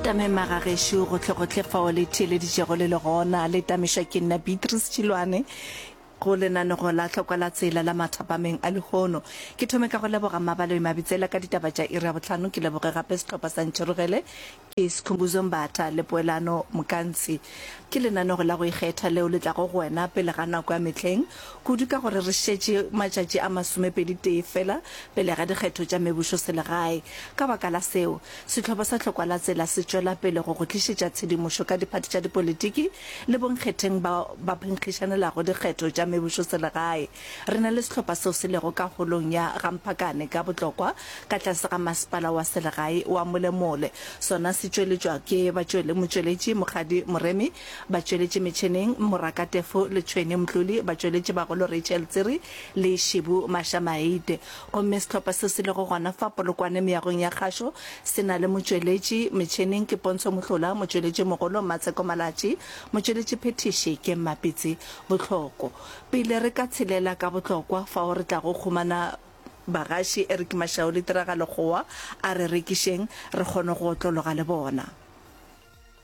tamema ga gešo gotlhegotlhe fao le theeleditšego le le gona le tamišwa ke nna beatrice tšhilwane go lenanego la tlhokwa la tsela la mathapameng a lehono ke thome ka go leboga mabaloi mabitsela ka ditaba tša iri ya botlhano ke leboge gape setlhopha sa ntšherogele ke sekhumbuzo mbatha le poelano mokantshi ke lenanego la go ikgetha leo le tlago go wena pele ga nako ya mehleng kudu ka gore re šetše matšatši a masomepedi-tee feela pele ga dikgetho tša mebusoselegae. Ka baka la seo, sehlopha sa Tlhokwalatsela se tšwela pele go go tlišetša tshedimošo ka diphathi tša dipolitiki le bonkgetheng bao ba phenkgišanelago dikgetho tša mebusoselegae. Re na le sehlopha seo se lego ka Holong ya Gamphakane ka Botlokwa ka tlase ga Masepala wa Selegae wa Molemole, sona se tšweletšwa ke batšwelemotšweletši Mokgadi Moremi, Batšweletši metšheneng, Moraka Tefo le Tšhwene Mtloli, batšweletši bagolo Rachel Tsiri le Shibu Mashamaite. Gomme sehlopha seo se lego gona fa Polokwane Meagong ya Kgašo se na le motšweletši metšheneng ke Pontsho Mohlola, motšweletši mogolo Mmatsheko Malatši, motšweletši phethiši ke Mmapitsi Bohloko. Pele re ka tshelela ka bohlokwa fao re tlago khumana bagaši Eric Mashau le Tiragalo Kgowa a re rekišeng re kgone go otlologa le bona.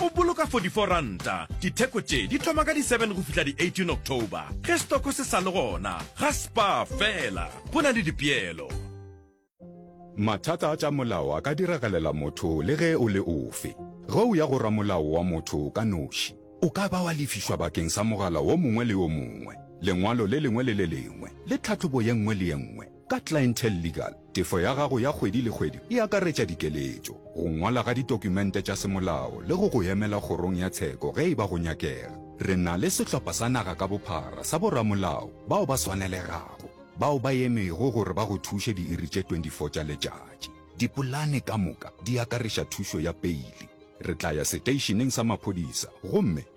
O boloka 44 ranta. Ditheko tše di thoma ka di 7 go fihla di 18 October. Ge stoko se sa le gona, ga spa fela. Go na le dipeelo. Mathata a tša molao a ka diragalela motho le ge o le ofe. Ge o ya go ramolao wa motho ka noši, o ka ba wa lefišwa bakeng sa mogala wo mongwe le yo mongwe, lengwalo le lengwe le le lengwe le tlhahlobo ye nngwe le ye nngwe. Ka Clientele Legal, tefo ya gago ya kgwedi le kgwedi e akaretša dikeletšo, go ngwala ga ditokumente tša semolao le go go emela kgorong ya tsheko ge e ba go nyakega. Re na le sehlopha sa naga ka bophara sa boramolao bao ba swanelegago bao ba emego gore ba go thuše diiri tše 24 tša letšatši. Dipolane ka moka di akareša thušo ya peile. Re tla ya seteišeneng sa maphodisa gomme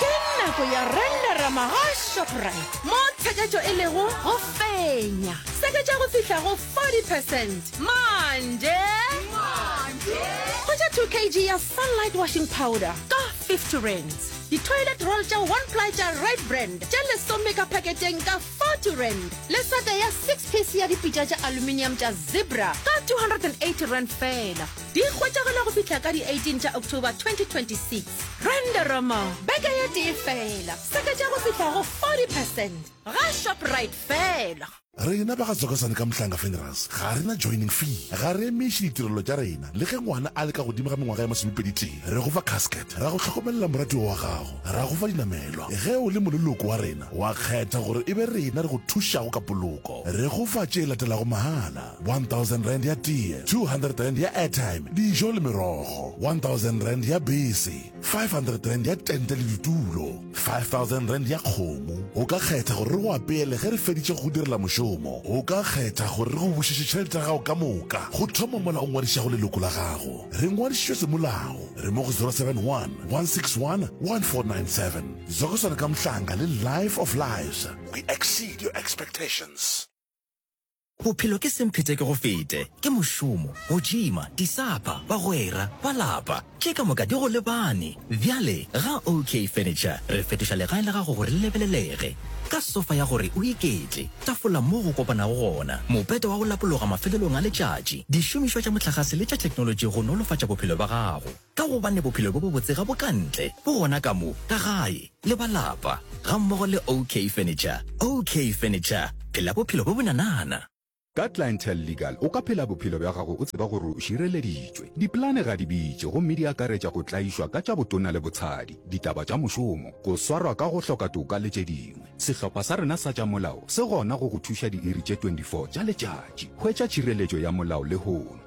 ke nako ya rendera magashoprite mo tsheketšo e lego go fenya seketša go fihla go 40 percent manje go ja 2 kg ya sunlight washing powder ka 50 rands di-toilet roll tša one ply tša red brand tša lesome ka paketeng ka 40 rand le sete ya six piece ya dipitša tša aluminium tša zebra ka 280 rand fela Di hwetšagala go fihla ka di 18 tša October 2026. Rendoromo, beke ye tee fela, seketša go fihla go 40 percent ga Shoprite fela. Rena ba ga Zokosane ka Mhlanga Funerals ga re na joining fee. Ga re emiše ditirelo tša rena le ge ngwana a le ka godimo ga mengwaga ya masomepedi-tee. Re go fa casket, ra go hlokomelela moratiwa wa gago, ra go fa dinamelwa ge o le moleloko wa rena wa kgetha gore e be rena re go thušago ka poloko. Re go fa tše latelago mahala. 1000 rand ya tee, 200 rand ya airtime, dijo le merogo, 1000 rand ya bese, 500 rand ya tente le ditulo, 5000 rand ya kgomo. O ka kgetha gore re go apeele ge re feditše go go direla mošomo. O ka kgetha gore re go bušetše tšhelete ya gago ka moka. Go thoma mola o ngwadišago leloko la gago, re ngwadišitšwe semolao. Re mo go 071 161 1497. Zokoswana ka Mhlanga le Life of Lives. We exceed your expectations. Bophelo ke semphetekegofete, ke mošomo, go džima, disapa, bagwera, ba lapa. Tše ka moka di go lebane. Bjale, ga OK Furniture re fetoša legae la gago gore le lebelelege. Ka sofa ya gore o iketle, tafola moo go kopanago gona, mopete wa go lapologa mafelelong a letšatši, dišomišwa tša mohlagase le tša theknolotši go nolofatša bophelo bja gago. Ka gobane bophelo bjo bobotse ga bo ka ntle, bo gona ka mo, ka gae, le ba lapa, gammogo le OK Furniture. OK Furniture, phela bophelo bjo bonanana! Ka Clientele Legal o ka phela bophelo bja gago o tseba gore o šireleditšwe. Dipolane ga di bitše gomme di akaretša go tlaišwa ka tša botona le botshadi, ditaba tša mošomo, go swarwa ka go hloka toka le tše dingwe. Sehlopha sa rena sa tša molao se gona go go thuša diiri tše 24 tša letšatši. Hwetša tšhireletšo ya molao lehono.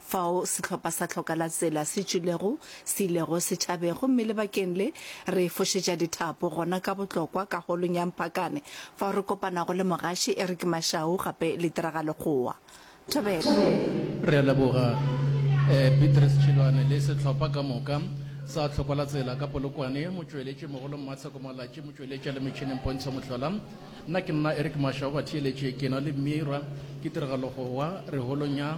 Fao sehlopha sa Hloka la Tsela se tšwilego, se ilego se tšhabe, gomme lebakeng le, re fošetša dithapo gona ka botlokwa ka Holong ya Mpakane, fao re kopanago le mogaši Eric Mashau gape le Tiragalogoa. Thobela. Re a leboga, Beatrice Tšhilwane le sehlopha ka moka sa Hloka la Tsela ka Polokwane, motšweletši mogolo Mmatsheko Malatši, motšweletši a le metšhineng Pontsho Mohlola, nna ke nna Eric Mashau, batheeletši ke na le Mira, ke Tiragalogoa, re Holong ya.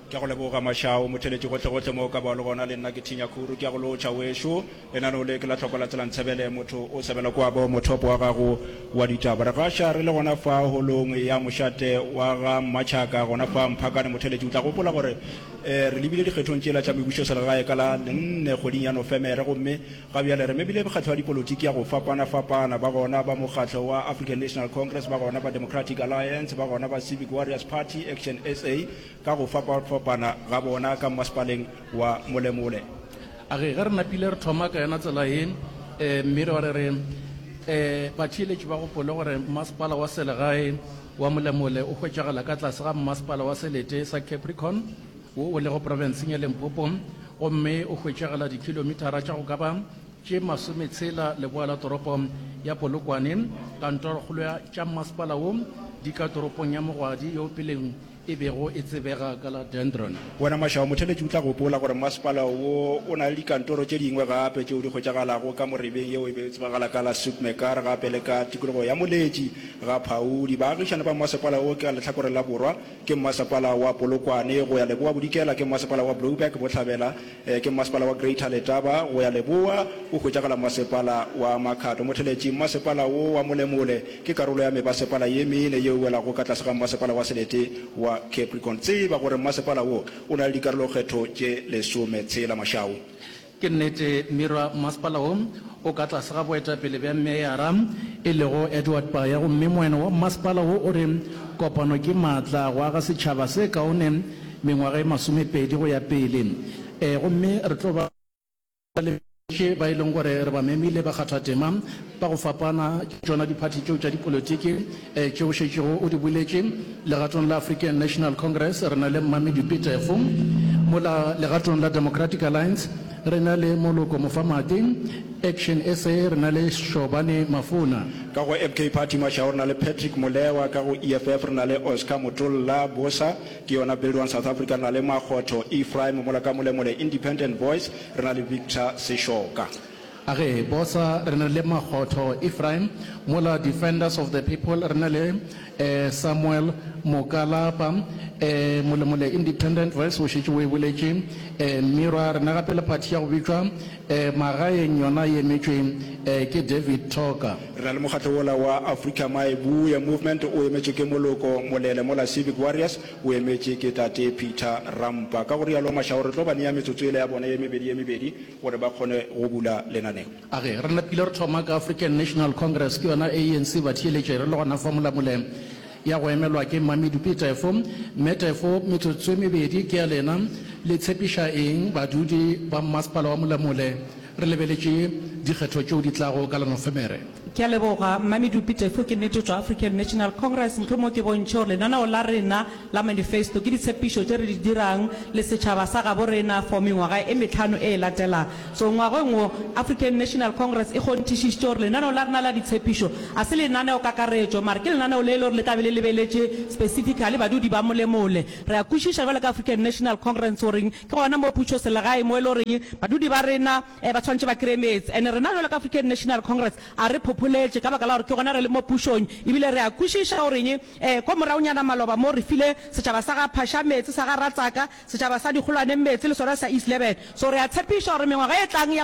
Ke a go leboga Mashau, motheletši gohlegohle mo o ka ba o le gona. Le nna ke Thinya Khuru. Ke a go lotšha wešo. Lenaneo le ke la hloko la Tsela Ntsebele. Motho o sebela kwa bo mothopo wa gago wa ditaba. Re gaša re le gona fa holong ya mošate wa ga Mmatšhaka gona fa Mphakane. Motheletši o tla gopola gore re lebile dikgethong tšela tša mebušoselegae ka la nne kgweding ya Nofemere gomme ga bjale re memile mekgatlo ya dipolotiki ya go fapanafapana, ba gona ba mokgatlo wa African National Congress, ba gona ba Democratic Alliance, ba gona ba Civic Warriors Party, Action SA, ka go fapafapana ga bona ka mmasepaleng wa Molemole. A re, Ge re napile re thoma ka yona tsela ye, mme re ba re re, batheeletši ba gopole gore mmasepala wa selegae wa Molemole o hwetšagala ka tlase ga mmasepala wa selete sa Capricorn wo o lego profenseng ya Limpopo gomme o hwetšagala dikhilomitara tša go ka ba tše masometshela leboa la toropo ya Polokwane. Kantorokgolo tša mmasepala wo di ka toropong ya Mogwadi yo o peleng e bego e tsebega ka la Dendron. Wena Mashao, motheletši o tla gopola gore masepala wo o na le dikantoro tše dingwe gape tšeo di hwetšagalago ka morebeng yeo e bego e tsebagala ka la Soekmekaar gape le ka tikologo ya Moletši ga Phaudi. Baagišani ba masepala wo ka lehlakoreng la borwa ke mmasepala wa Polokwane, go ya leboa-bodikela ke mmasepala wa Brouberg-Bohlabela, Ke mmasepala wa Greater Letaba go ya leboa, o hwetšagala Mmasepala wa Makhado. Motheletši, Mmasepala wo wa Molemole ke karolo ya mebasepala ye mene ye e welago ka tlase ga Mmasepala wa Selete wa Capricorn. Tseba gore mmasepala wo o na le dikarolokgetho tše lesome tshela. Mashau. Ke nnete, Mmirwa, mmasepala wo o ka tlase ga boetapele bja meyara, e lego Edward Paya, gomme moeno wa mmasepala wo o re, Kopano ke maatla, go aga setšhaba se kaone mengwaga e masomepedi go ya pele, ee, gomme re tlo ba le bohle ba e lego gore re ba memile, bakgathatema ba go fapana, ke tšona diphathi tšeo tša dipolotiki tše o šetšego o di boletše. Legatong la African National Congress re na le Mmami Dupi Tefo, mola legatong la Democratic Alliance re na le Moloko Mofamadi, Action sa re na le Shobane Mafona. Ka go FK Party Mashau re na le Patrick Molewa, ka go EFF re na le Oscar Motolla, Boosa, Ke yona Build One South Africa, re na le Makgotho Ephraim mola ka Molemole, Independent Voice, re na le Victor Seshoka. Age Bosa, re na le Makgotho Ephraim, mola Defenders of the People, re na le Samuel Mokalapa, Molemole Independent Voice o šetše o e boletše, Mmirwa, re na gape le phathi ya go bitšwa Magaeng yona e emetšwe ke David Toker. Re na le mokgatlo wola wa Afrika My Buye Movement o emetšwe ke Moloko Molele mola Civic Warriors o emetše ke Tate Peter Rampa. Ka go realo Mashau re tlo ba nea metsotso yela ya bona ye mebedi ye mebedi gore ba kgone go bula lenaneo. A re, Re napile re thoma ka African National Congress ke yona ANC batheeletše re le gona fa molamoleng. ya go emelwa ke Mmamedupi Tefo. Mme Tefo, metsotso e mebedi ke ya lena. Le tshepiša eng badudi ba mmasepala wa Molamule? Re lebeletše dikgetho tšeo di tlago ka la Nofemere. Ke a leboga, Mmamedupi Tefo. Ke nnete tšwa African National Congress, mohlomongwe ke bontšhe gore lenaneo la rena la manifesto ke ditshepišo tše re di dirang le setšhaba sa gabo rena for mengwaga e mehlano e e latelang. So ngwageng wo, African National Congress e kgonthišišitše gore lenaneo la rena la ditshepišo ga se lenaneokakaretšo, mare ke lenaneo le e le gore le tla be le lebeletše specifically badudi ba mole-mole. Re a kwešiša bjalo ka African National Congress gore ke gona mo pušoselegae mo e le gore badudi ba rena ba tshwanetše ba kreye meetse. And rena bjalo ka African National Congress ga re phopholetše ka baka la gore ke gona re le mo pušong ebile re a kwešiša gore ko moragonyana maloba mo re file setšhaba sa ga Phasha meetse, sa ga Ratsaka, Setšhaba sa Dikgolwaneng Meetse le sona sa East Leben so re a tshepišwa gore mengwaga e tlang ya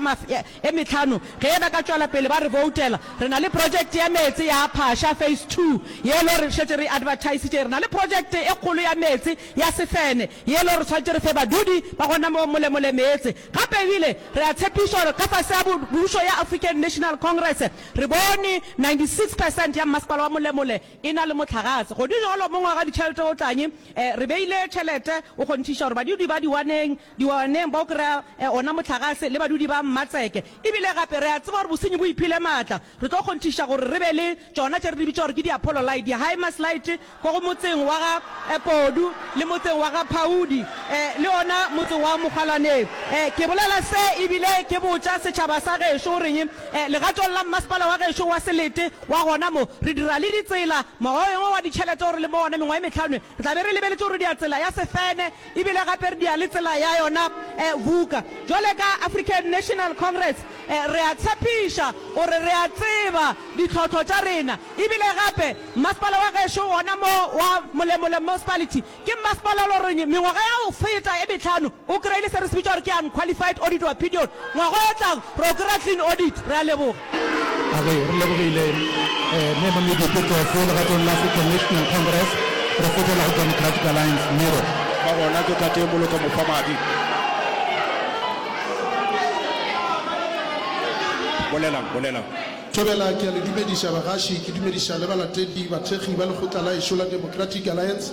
e mehlano ge ba ka tšwela pele ba re boutela, re na le project ya meetse ya Phasha Phase Two ye lo re šetše re e advertisitše. Re na le project e kgolo ya meetse ya Sefene ye lo re swanetše re fe badudi ba gona mo molemole meetse. Gape ebile re a tshepišwa gore ka fase ga pušo ya African National Congress re bone 96 percent ya mmasepala wa molemole e na le mohlagase. Godi jalo, mongwe wa raditšhelete o tla nye, eh, re beile tšhelete, o kgonthiša gore badudi ba diwaneng, diwaneng ba o kry-a, eh, ona mohlagase, le badudi ba Mmatseke. E bile gape re a tseba gore bosenyi bo iphile maatla. Re tlo kgonthiša gore re be le tšona tše re di bitša gore ke di-Apollo Light, di-Hymas Light, ko go motseng wa ga, eh, Podu, le motseng wa ga Phaudi, eh, le ona motse wa Mokgwalaneng. Eh, ke bolela se e bile ke botša setšhaba sa gešo goreng, eh, legatong la mmasepala wa gešo wa Selete, Wa gona mo, re dira le ditsela. Mokgwa o yengwe wa ditšhelete o re le mo wona mengwaga e mehlano, re tla be re lebeletše go rudia tsela ya Sefene, e bile gape re dia le tsela ya yona Vuka. Bjale ka African National Congress, re a tshepiša gore re a tseba ditlhohlo tša rena, e bile gape Mmasepala wa gešo gona mo wa Molemole Municipality Ke mmasepala Loreng mengwaga ya go feta e mehlano o kry-ile se re se bitša gore ke Unqualified Audit Opinion. Ngwaga o tlang re o kry-a Clean Audit. Re a leboga. Re lebogile Mme Mamedi Petofu legatong la African National Congress. Re fetela go Democratic Alliance, Miro. Ba gona ke Tate Moloko Mofamadi. Bolelang, bolelang. Thobela, ke a le dumediša bagaši, ke dumediša le balatedi, bathekgi ba lekgotla la ešo la Democratic Alliance.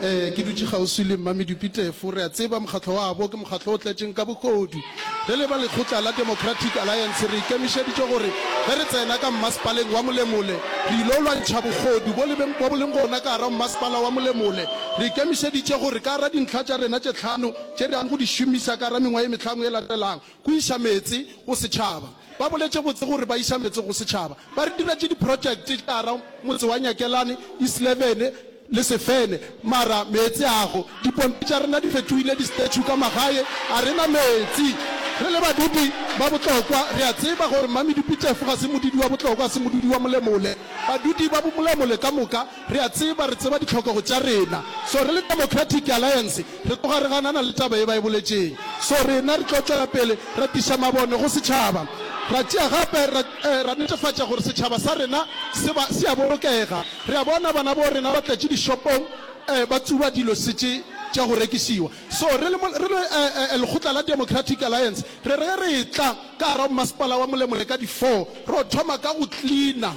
Ee, ke dutše kgauswi le Mmami Dupitefu. Re a tseba mokgatlo wabo ke mokgatlo o tletšeng ka bogodu. Re le ba lekgotla la Democratic Alliance re ikemišeditše gore ge re tsena ka mmasepaleng wa Molemole re il'o lwantšha bogodu bo le bo leng gona ka gare ga mmasepala wa Molemole. Re ikemišeditše gore ka gare ga dintlha tša rena tše tlhano tše re yang go di šomiša ka gare ga mengwaga ye mehlano e latelang, Go iša meetse go setšhaba. Ba boletše botse gore ba iša meetse go setšhaba. Ba re diretše diprojekte tšara motse wa Nyakelane, Islevene le Sefene mara meetse ago. Dipompi tša rena di fetohile distechu ka magae. A re na meetse. Re le badupi ba botlokwa re a tseba gore Mmamedupitefo ga se modudi wa botlokwa, ga se modudi wa Molemole. Badudi ba Molemole ka moka Re a tseba, re tseba ditlhokego tša rena. So, re le Democratic Alliance, re tloga re ganana le taba ye ba e boletšeng. So, rena re tlo tšwela pele ra tliša mabone go setšhaba. Ra tšea gape, ra, eh, ra netefatša gore setšhaba sa rena se ba, se a bolokega. Re a bona bana bo rena ba tletše dishopong, eh, ba tsuba dilo se tše tša go rekišiwa. So, re le, re le, eh, eh, lekgotla la Democratic Alliance, re re ge re etla ka gar'a Mmasepala wa Molemore ka di four, ro thoma ka go cleaner.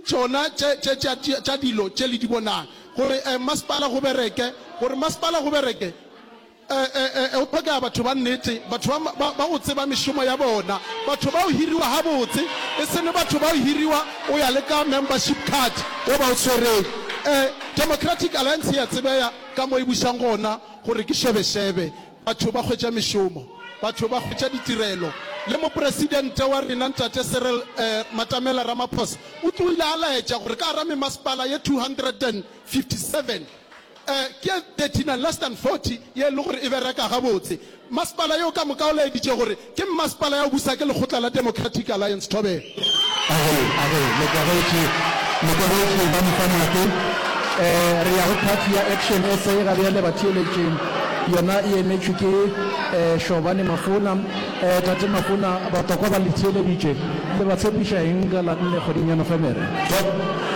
Tšona tše, tše tša, tša dilo tše le di bonago, gore e, masepala go bereke, gore masepala go bereke, e, e, e, go tlhokega batho ba nnete, batho ba, ba, ba go tseba mešomo ya bona, batho ba go hiriwa gabotse, e seno batho ba go hiriwa o ya le ka membership card o ba o swereng. E, Democratic Alliance e a tsebeya ka mo e bušang gona, gore ke šebešebe. Batho ba hwetša mešomo, batho ba hwetša ditirelo, le Mopresidente wa rena Ntate Cyril Matamela Ramaphosa o tloile a laetša gore ka gara memasepala ye 257, ke 39 less than 40 ye e le gore e bereka gabotse. Masepala yeo ka moka o laeditše gore Ke mmasepala ya Obusa ke lekgotla la Democratic Alliance Thobela. A re, a re, Mokwegetši, Mokwegetši, ba mpha nako. Eh, re ya go party ya Action SA ga bjale, batheeletši. Yona e emetšwe ke, eh, Shobane Mafona. Eh, Tate Mafona, batokwa ba le theeleditše. Le ba tshepiša eng ka la nne kgweding ya Nofemere? Ke,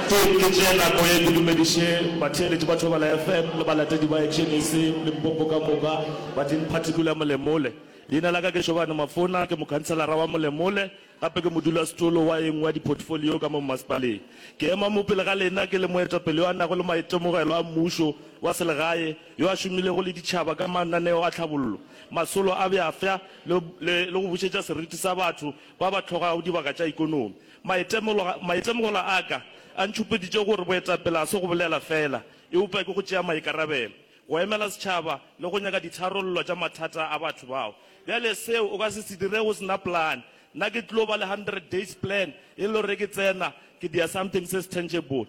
ke, ke tšee nako ye ke dumediše batheeletši ba Thobela FM le balatedi ba Action SA, Limpopo ka moka, ba tleng phathing kula molemole. Leina la ka ke Shobane Mafona, ke mokhanselara wa Molemole, gape ke modulasetolo wa e nngwe ya diphotofolio ka mo mmasepaleng. Ke ema mo pele ga lena ke le moetapele yo a nago le maitemogelo a mmušo wa selegae, yo a šomilego le ditšhaba ka mananeo a tlhabollo, masolo a bjafsa le, le, le go bušetša seriti sa batho ba ba hlogago dibaka tša ikonomi. Maitemogelo, maitemogelo a ka a ntšhupeditše gore boetapele ga se go bolela feela, eupša ke go tšea maikarabelo. go emela setšhaba le go nyaka ditharollo tša mathata a batho bao. Bjale seo o ka se se dire o se na plan. Nna ke tlo ba le hundred days plan e le gore ke tsena ke dia something se se tangible.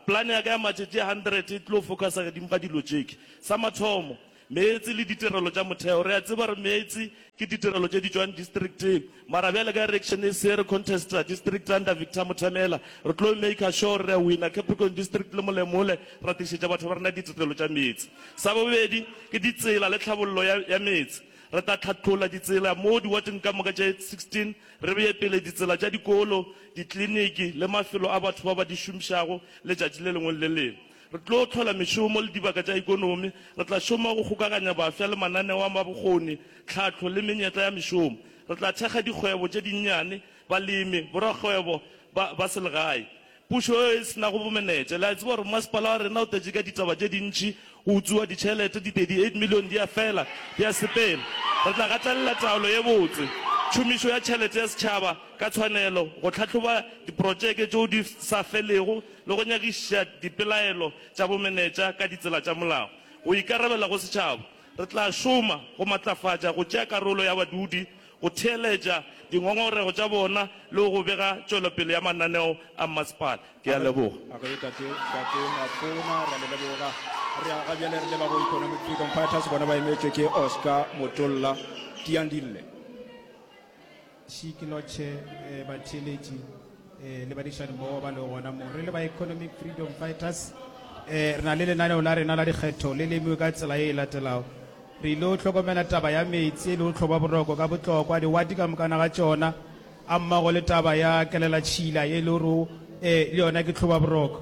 Plan ya ka ya matšatši a hundred e tlo focusa gedimpa dilo tšeke. Sa mathomo, meetse le ditirelo tša motheo. Re a tseba gore meetse ke ditirelo tše di tšwang districteng. Mara bjale ka erection e se re contesta district under Victor Mothamela, re tlo maker sure re a winner Capricorn district le Molemole ra tlišetša batho ba rena ditirelo tša meetse. Sa bobedi ke ditsela le tlhabollo ya ya meetse. Re tla tlhatlolla ditsela mo diwateng ka moka tše 16, re beye pele ditsela tša dikolo, dikliniki le mafelo a batho ba ba di šomišago letšatši le lengwe le le lengwe. Re tlo hlola mešomo le dibaka tša ekonomi. Re tla šoma go kgokaganya bafsa le mananeo a bokgoni, tlhahlo le menyetla ya mešomo. Re tla thekga dikgwebo tše dinnyane, balemi, borakgwebo ba ba selegae. Pušo yeo e se nago bomenetša, le a tseba gore masepala wa rena o tletše ka ditaba tše dintši, go utswiwa ditšhelete, di 38 million di a fela, di a sepela. Re tla gatelela taolo ye botse, tšhomišo ya tšhelete ya setšhaba ka tshwanelo, go tlhahloba diprotšeke tšeo di sa felego, le go nyakišiša dipelaelo tša bomenetša ka ditsela tša molao. Go ikarabela go setšhaba, re tla šoma go matlafatša go tšea karolo ya badudi, go theeletša dingongorego tša bona le go bega tšwelopele ya mananeo a mmasepala. Ke a leboga. A ge Tate, Tate Matona, re a le leboga. Re a ga bjale re leba go Economic Freedom Fighters, bona ba emetšwe ke Oscar Motolla Tiandille. She Kinotche, eh, batheeletši eh, le badišani mmogo ba lego gona mo re le ba Economic Freedom Fighters eh, re na le lenaneo la rena la dikgetho le lemiwe ka tsela e e latelago re ile o hlokomela taba ya metsi e le o tlhoba boroko ka botlokwa diwati ka mokana ga tšona a mmago le taba ya kelela tšhila e le oro um le yona ke tlhoba boroko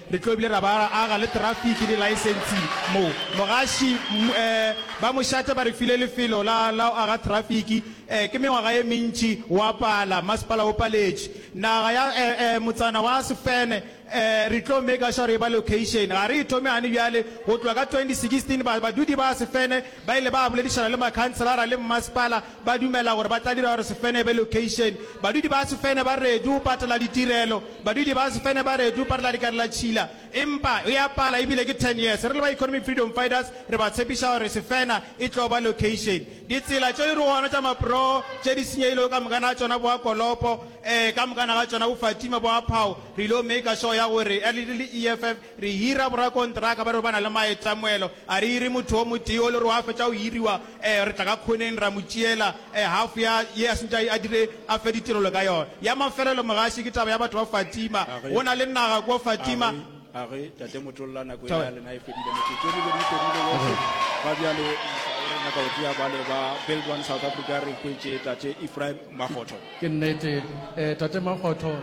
Re tlo bile ra ba aga le trafiki le laesensi mo. Mogaši, Mmu eh, ba Mošate ba re file lefelo la, la go aga trafiki. Eh, ke mengwaga ye mentši wa pala, masepala o paletše. Naga ya eh, eh, motsana wa Sefene, eh, re tlo maker sure e ba location. Ga re e thome gane bjale. Go tloga ka 2016 ba, badudi ba Sefene ba ile ba boledišana le makhanselara le mmasepala Ba dumela gore ba tla dira gore Sefene e be lokeišene. Badudi ba Sefene ba ready go patela ditirelo. Badudi ba Sefene ba ready go patela dikarelatšhila. Empa e a pala e bile ke ten years. Re le ba Economic Freedom Fighters re ba tshepiša gore Sefena e tlo ba lokeišene. Ditsela tše di re gona tša maproo tše di senyegilego ka mokana ga tšona bo a Kolopo, ee, ka mokana ga tšona bo Fatima, bo a Phao, re il'o maker sure ya gore, early, early EFF Re hira borakontraka ba re ba na le maetamoelo. A re hire motho o motee o le gore wa fetša go hiriwa, ee, re tla ka khoneng ra mo tšeela, ee, hafu ya ye a sentše a dire a fe ditirelo ka yona. Ya mafelelo, mogaši, ke taba ya batho ba Fatima. A re, Go na le naga kua Fatima. A re, a re, Tate Motolla, nako yela ya lena e fedile. Metsotso e mebedi e fedile yohle. Ga bjale Mmušo o re nyaka go tšea bale ba Build One South Africa. Re hwetše Tate Ephraim Makgotho. Ke nnete, ee, Tate Makgotho.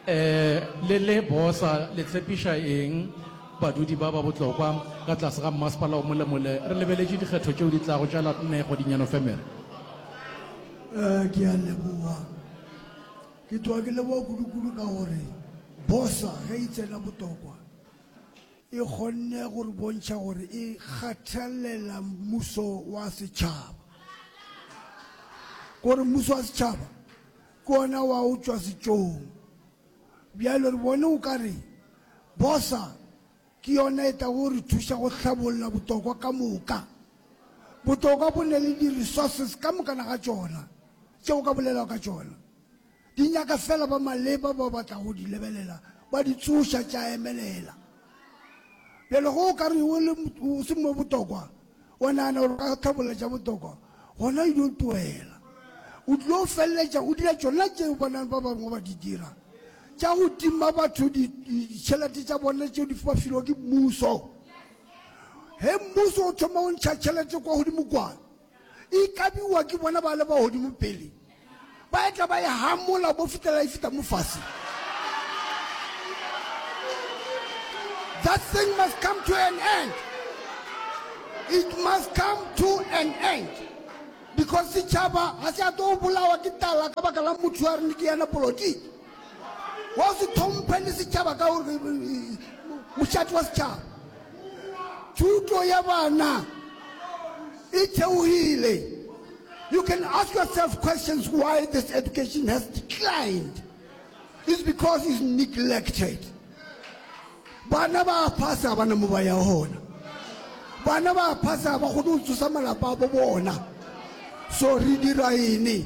Le le bosa le tshepiša eng badudi ba ba botlokwa ka tlase ga mmasepala o molemole? Re lebeletše dikgetho tšeo di tlago tša la nne kgwedinyana Nofemere. Ke a leboga. Ke tloga ke leboga kudukudu ka gore bosa ge e tsena botokwa e kgonne go re bontšha gore e kgathalela mmuso wa setšhaba. Ko re mmuso wa setšhaba Ke gona wa go tšwa setšong. Bjalo re bone o ka re bosa ke yona e tlago go re thuša go hlabolla botokwa ka moka. Botokwa bo na le di-resources ka mokana ga tšona tše o ka bolelago ka tšona. Di nyaka fela ba maleba bao ba tlago go di lebelela ba di tsoša tša emelela. Bjale ge o ka re o se mo botokwa, wa nagana gore ka tlhabolla tša botokwa gona e dio tlohela o tlilo feleletša o dira tšona tšeo bonang ba bangwe ba di dira tša go tima batho ditšhelete tša bone tšeo di ba filwa ke mmuso ge mmuso o thoma go ntšha tšhelete kwa godimo kwana e kabiwa ke bona ba le ba godimo pele Ba etla ba e hamola bo fitela e fita mo fase. That thing must come to an end. It must come to an end. Because setšhaba ga se a tlo bolawa ke tala ka baka la motho a re ke yena polotiki. Wa se thomphe le setšhaba ka gore mošate wa setšhaba. Thuto ya bana e theogile. You can ask yourself questions why this education has declined. It's because it's neglected. Bana ba phasa bana mo ba ya hona. Bana ba phasa ba go tsosa malapa a bona. So re dira ene.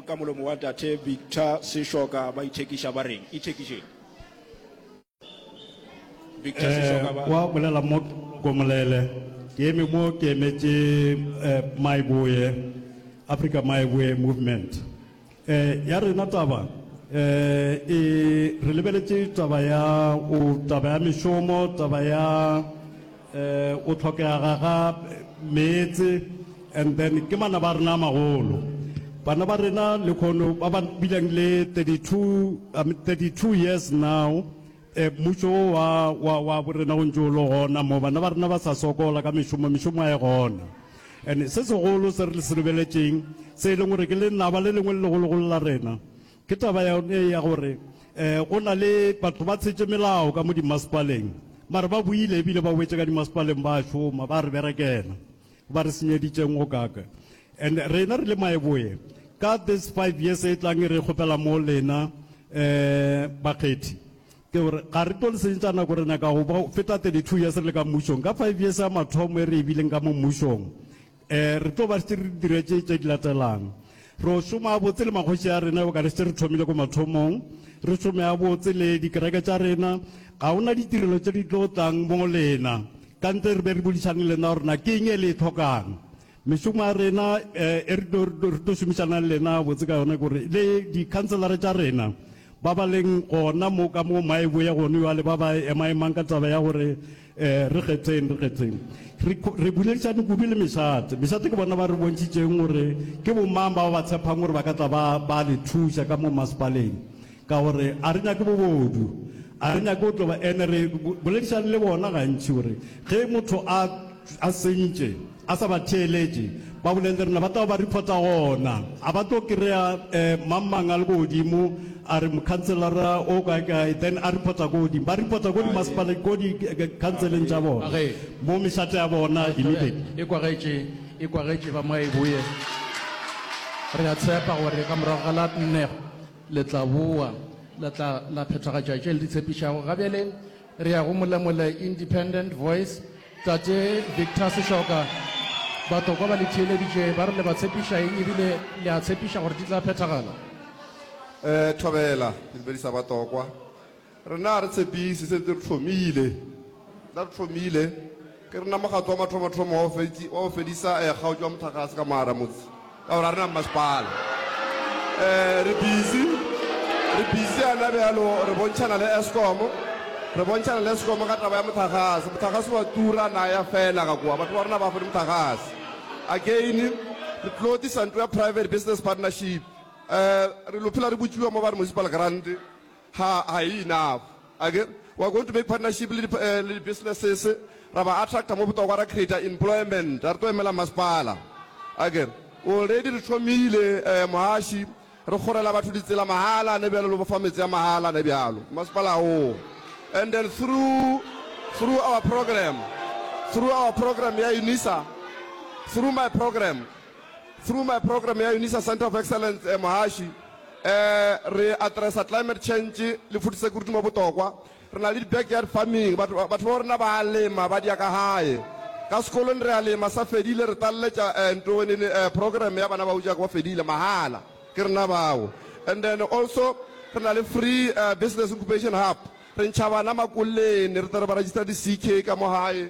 Ka molomo wa Tate Victor Seshoka ba ithekiša ba reng? Ithekišeng. Victor Eh, Seshoka ba. kwa bolela mo komolele ke eme mo ke emetše eh, maiboye africa maiboye movement eh, ya rena taba eh, e re lebeletše taba ya o taba ya mešomo taba ya Go tlhokega ga meetse and then ke manaba a rena a magolo. Bana ba rena lekhono ba ba bileng le 32, 32 years now, mmušo wo wa, wa, wa bo rena o ntše o le gona mo. Bana ba rena ba sa sokola ka mešomo, mešomo a e gona. And se segolo se re se lebeletšeng, se e leng gore ke lenaba le lengwe le legologolo la rena, Ke taba yone ya gore go na le batho ba tshetše melao ka mo dimasepaleng, mare ba boile ebile ba boetše ka dimasepaleng ba šoma, ba re berekela, ba re senyeditšeng go kaka. And rena re le Maeboe, ka this five years e tlang e re kgopela mo lena bakgethi, ke gore ga re tlo le senyetša nako, re nyaka go feta thirty-two years re le ka mmušong, ka five years ya mathomo e re e bileng ka mo mmušong, Re tlo ba šetše re dira tše tše di latelang, Re o šoma gabotse le makgoši a rena, eokare šetše re thomile ko mathomong. Re šome gabotse le dikereke tša rena. Ga go na ditirelo tše di tlo tlang mo go lena ka ntle re be re bodišane le lena gore na ke eng e le e tlhokang. Mešomo ya rena e re tlo re tlo šomišanang le lena gabotse ka yona ke gore le dikhanselara tša rena ba ba leng gona mo ka mo Maeboe gone bjale ba ba emaemang ka taba ya gore Ee, re kgetheng, re kgetheng. Re, re boledišane kudu le mešate. Mešate ke bona ba re bontšitšeng gore ke bomang bao ba tshephang gore ba ka tla ba, ba le thuša ka mo masepaleng. Ka gore a re nyake bobodu. A re nyake go tlo ba, ene re boledišane le bona gantši gore ge motho a, a sentše, A sa ba theeletše, ba bolelele rena, ba tla ba reporta gona. A ba tlo kry-a mang mang a le ko godimo, a re mokhanselara o kae kae, then a reporta ko godimo. Ba reporta ko dimasepala, ko dikhanseleng tša bona, mo mešate ya bona immediately. E kwagetše, e kwagetše, ba mwa e boye. Re a tshepa gore ka morago ga la nne le tla bowa, le tla la phethagatša tše le di tshepišago. Ga bjale re ya go Molemole Independent Voice. Tate Victor Seshoka, Batlokwa ba le theeleditše ba re le ba tshepiša eng ebile le a tshepiša gore di tla phethagala? Thobela, Ke dumedisa Batlokwa. Rena ga re tshepiše, sentse re hlomile. Rena re hlomile, ke rena mokgatlo wa mathomathomo wa go fediša kgaotšo ya motlakase ka mogaramotse. Ka gore a re na mmasepala. E, re busy. Re busy yana bjalo, re bontšhana le Eskom. Re bontšhana le Eskom ka taba ya mothagase. Mothagase wa tura na ya fela ga kwa. Batho ba rena ba kgone mothagase. Again, re tlo tlisa ntlo ya private business partnership. E, re lo phela re botšiwa mo ba re municipal grant. Ha, ha e enough. A ke re, We are going to make partnership le di, eh, le di-businesses, ra ba attracta mo botokwa ra creata employment, a re tlo emela masepala. A ke re, Already re thomile, eh, mohaši, re kgorela batho ditsela mahala, ne bjalo le bofa metse ya mahala, ne bjalo, masepala wo. And then through, through our program, through our program ya UNISA, through my program, through my program ya Unisa Center of Excellence eh, Mohashi eh, re addressa climate change le food security mo botokwa re na le di-backyard farming batho ba batho ba rona ba a lema ba dia ka gae ka sekolong re a lema sa fedile re taleletša eh, nto nene eh, program ya bana ba o jaaka ba fedile mahala ke rena bao and then also re na le free eh, business incubation hub re ntšha bana makoleni re tla re ba register di-ck ka mo gae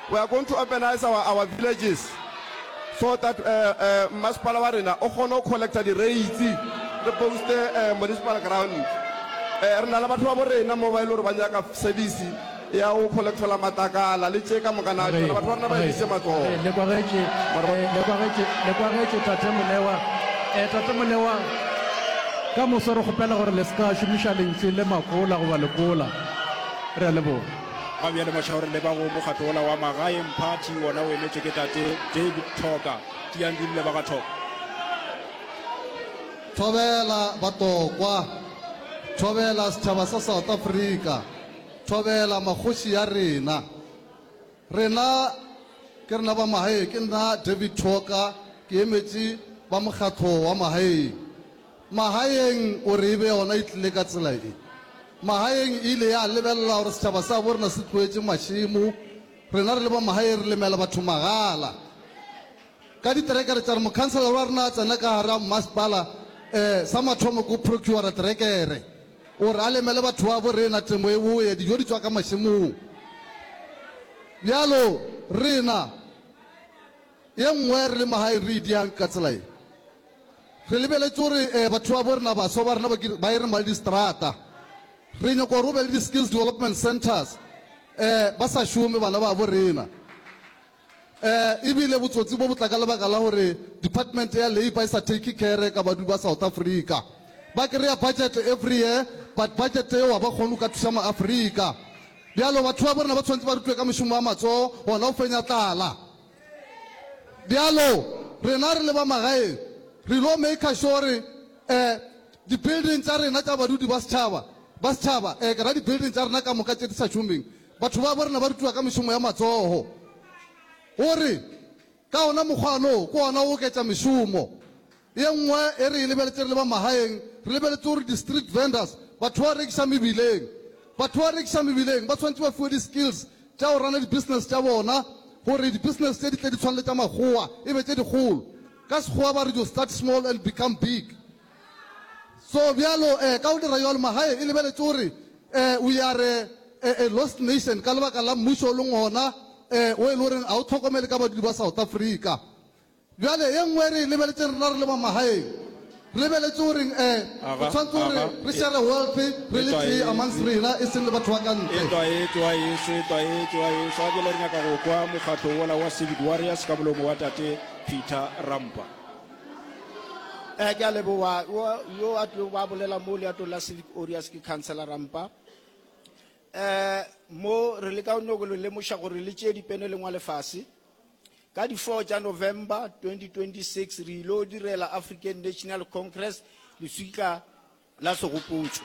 We are going to organise our our villages so that uh, uh, mmasepala wa rena o kgone go collecta di-rates re boste uh, municipal ground uh, re na le batho ba bo rena mo ba e le gore ba nyaka service ya go collectola matakala le tše ka mokana batho ba rena ba edise matsogo lekwagetše tate molewa um tate molewa ka moso re kgopela gore le se ka šomiša lentšu le makola goba lekola re a leboga Ga bjale mašaore le ba go mokgatlo wola wa magaeng party wona o emetšwe ke tate David Thoka. Tiang di rile ba ga Thoka. Thobela batokwa, thobela setšhaba sa South Africa, thobela makgoši ya rena. Rena ke rena ba magaeng, ke nna David Thoka ke emetše ba mokgatlo wa magaeng. Magaeng o re e be yona e tlile ka tsela e. Magaeng e ile ya lebelela gore setšhaba sa bo rena se tloetše mašemo, rena re le ba magaeng re lemela batho magala ka diterekere tša re. Mokhanselara wa rena a tsena ka gare ga mmasepala, um sa mathomo ke go procurer terekere gore a lemele batho ba bo rena, temo e bowe, dijo di tšwa ka mašemong bjalo rena. Ye nngwe, re le mo gae re e diang ka tsela ye, re lebeletše gore um batho ba bo rena, baswa ba rena ba ke ba e reng ba le distrata. Re nyaka gore go be le di-skills development centres um ba sa šome bana ba bo rena. Um ebile botsotsi bo bo tla ka lebaka la gore department ya labour e sa take care ka badu ba South Africa. Ba kry-a budget every year but budget eo ga ba kgone go ka thuša maAfrika. Bjalo batho ba bo rena ba tshwanetse ba rutwe ka mošomo wa matsogo gona go fenya tlala. Bjalo rena re le ba magaeng re ylo maker sure gore eh di-building tša rena tša badudi ba setšhaba ba setšhaba eh ke ra di-building tša rena ka moka tše di sa šomeng batho ba bo rena ba rutiwa ka mešomo ya matsogo gore ka ona mokgwano ke ona o oketša mešomo Ye nngwe e re e lebeletše re le ba magaeng, re lebeletše gore di-street vendors, batho ba rekiša mebileng, batho ba rekiša mebileng ba swanetše ba fiwe di-skills tša go rana di-business tša bona gore di-business tše di tle di tshwane le tša makgowa, e be tše dikgolo. Ka Sekgowa ba re you start small and become big. So bjalo eh ka go dira bjalo magae e lebeletše gore eh we are a, a lost nation ka lebaka la mmušo o leng gona eh o e le goreng ga o tlhokomele ka badudi ba South Africa. Bjale, ye nngwe re e lebeletše rena re le ba magaeng. Re lebeletše go reng? E, re tshwanetse go re, re šere wealth re le tee amongst rena, e seng le batho ba ka ntle. Etwa, etwa, ešo, etwa, etwa, ešo. A bjale re nyaka go kwa mokgatlo wola wa Civic Warriors ka molomo wa Tate Peter Rampa. E, ke a leboga. Wo, yo a tlilego ba bolela mo leatong la Civic Warriors ke Councillor Rampa. E, mo re leka go nyoko le lemoša gore le tšee dipene le ngwale fase. Ka di 4 tša November 2026 re il'o direla African National Congress leswika la segopotšo.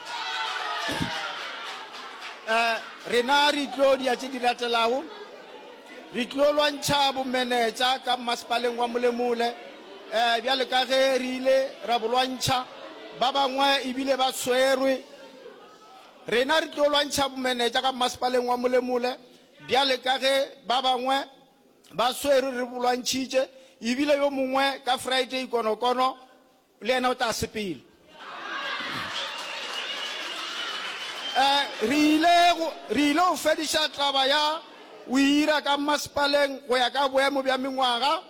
Eh, rena re tlo dia tše di latelago, re tlo lwantšha bomenetša ka mmasepaleng wa Molemole, eh, bjale ka ge re ile ra bo lwantšha, ba bangwe e bile ba swerwe. Rena re tlo lwantšha bomenetša ka mmasepaleng wa Molemole, Bjale ka ge ba bangwe ba swerwe, re bolwantšhitše, ebile yo mongwe ka Friday konokono le yena o tla sepela. Re ile, re ile go fediša taba ya go ira ka mmasepaleng go ya ka boemo bja mengwaga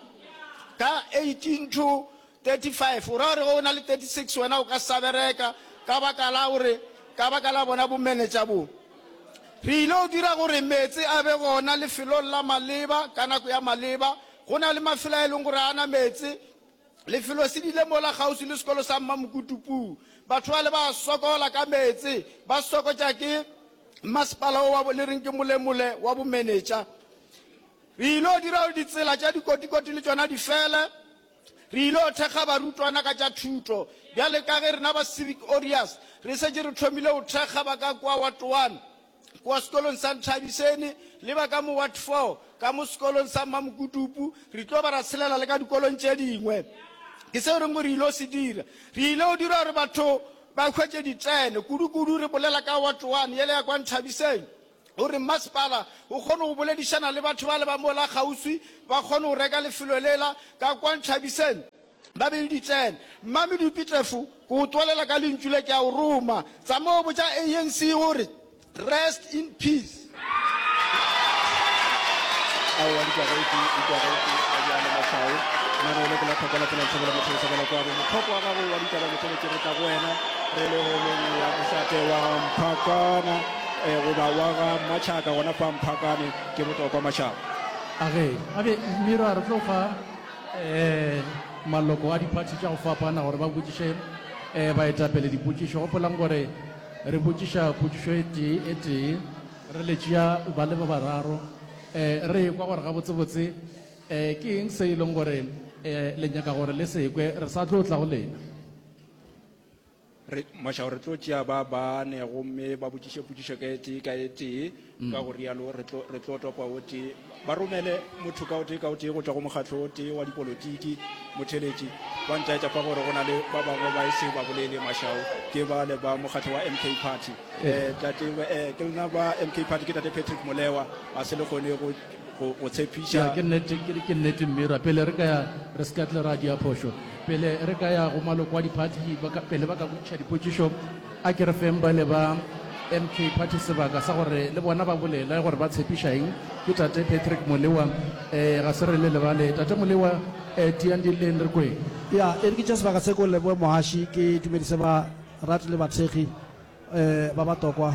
ka 18 to 35 o ra gore ge o na le 36 wena o ka sa bereka ka baka la gore ka baka la bona bo manager bo re ile o dira gore meetse a be gona lefelong la maleba ka nako ya maleba go na le mafelo a e leng gore a na meetse lefelo se dile mola kgauswi le sekolo sa mma mokutupu batho ba le ba sokola ka meetse ba sokotša ke mmasepala o wa bo le reng ke molemole wa bo manager re ile o dira gore ditsela tša dikotikoti le tšona di fele Re il'o thekga barutwana ka tša thuto. Bjale ka ge rena ba Civic Aureus re šetše re thomile go thekga ba ka kua Ward One, kua sekolong sa Nthabiseni, le ba ka mo Ward Four, ka mo sekolong sa Mmamokutupu, re tlo ba ra tshelela le ka dikolong tše dingwe. Ke seo re reng gore re il'o se dira. Re il'o dira gore batho ba hwetše ditene. Kudu-kudu re bolela ka Ward One, yela ya kua Nthabiseni. O re mmasepala o kgone go boledišana le batho bale ba mola kgauswi ba kgone go reka lefelo lela ka kwa Nthabiseng ba be le ditseno. Mmamedupi Tlefu, ke go twalela ka lentšu le, ke a o roma. Tsamao botša ANC gore rest in peace. eh, goba wa ga Machaka gona fa Mphakane ke botokwa Mashaba. A ge, a be Mmiro a re tlo fa eh, maloko a diphathi tša go fapana gore ba botšiše eh, baetapele dipotšišo. Gopolang gore re botšiša potšišo e tee e tee, re le tšea ba le ba bararo, eh, re ekwa gore gabotsebotse eh, ke eng se e leng gore eh, le nyaka gore le se kwe, re sa tlo tla go lena. Re, mašao, re tlo tšea ba bane gomme ba botšiše potšišo ka e tee ka e tee, ka go rialo re tlo, re tlo topa o tee. Ba romele motho ka o tee ka o tee go tšwa go mokgatlo o tee wa dipolotiki, motheletši. Ba ntaetša fa gore go na le ba bangwe ba e se ba bolele, mašao, ke bale ba mokgatlo wa MK Party. Eh, tate, eh, ke lena ba MK Party, ke Tate Patrick Molewa, a se le kgone go. go go tshepiša ya ke nnete ke ke nnete mmira pele re ka ya re se ka tle ra dia phošo pele re ka ya go maloko a diphathi ba ka- pele ba ka botšiša dipotšišo a ke re feng bale ba mk party sebaka sa gore le bona ba bolela gore ba tshepiša eng ke tate patrick molewa um ga se re le lebale tate molewa um tiyang dilleng re kweng ya e re ke tša sebaka se ko leboe mogaši ke dumedise ba rate le bathekgi um ba ba tokwa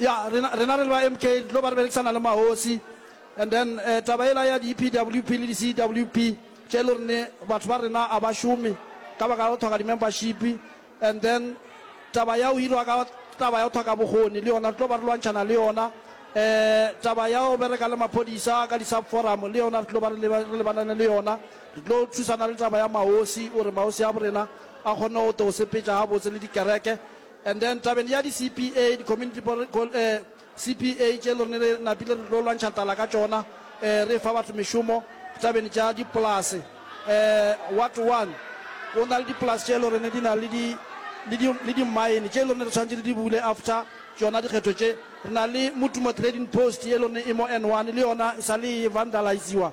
ya rena rena re le ba mk lo ba re berekisana le mahosi and then uh, taba ela ya di-epwp le di-cwp tše e le gore batho ba rena a ba šome ka baka la go tlhoka di-membership and then taba ya go hirwa ka taba ya go tlhoka bokgoni le yona re tlo ba re lwantšhana le yona um taba ya go bereka le maphodisa ka di-sub forum le yona re tlo ba re lebanane le yona re tlo thusana le taba ya maosi o re maosi a borena ba kgonne go tlo go sepetša gabotse le dikereke. And then tabeng ya di-CPA, di-community pore, col, eh, CPA tše le rene re napile re tlo lwantšha tlala ka tšona, eh, re fa batho mešomo tabeng tša dipolase. Eh, Ward One go na le dipolase tše le rene di na le di, le di, le di-mine tše le rene re tshwanetse re di bule after tšona dikgetho tše. Re na le Motumo Trading Post ye le rene e mo N One, le yona e sa le e vandaliziwa.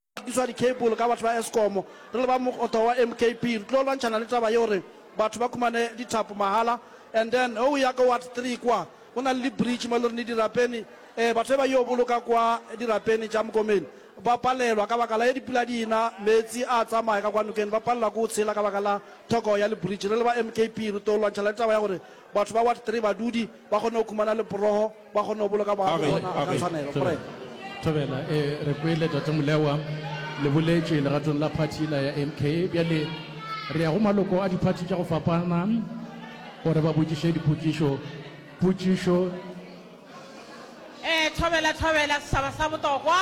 rekiswa di-cable ka batho ba Eskom. Re le ba mokgotho wa MKP re tlo lwantšhana le taba ya gore batho ba khumane dithapo mahala. And then ge o ya ko Ward Three kwa, go na le di-bridge mo e le gore dirapeni, um batho ba ba yo boloka kwa dirapeni tša Mokomeni ba palelwa ka baka la ge dipula di na, meetse a tsamaya ka kwa nokeng, ba palelwa ke go tshela ka baka la thoko ya li-bridge. Re le ba MKP re tlo lwantšhana le taba ya gore batho ba Ward Three, badudi, ba kgone go khumana leporogo. Ba kgone go boloka baagi ba bona ka tshwanelo. Morena. Thobela, ee, re kwele Tate Molewa le boletše legatong la phathi yela ya MK. Bjale re ya go maloko a diphathi tša go fapana gore ba botšiše dipotšišo. Potšišo. Ee, thobela, thobela, setšhaba sa botokwa.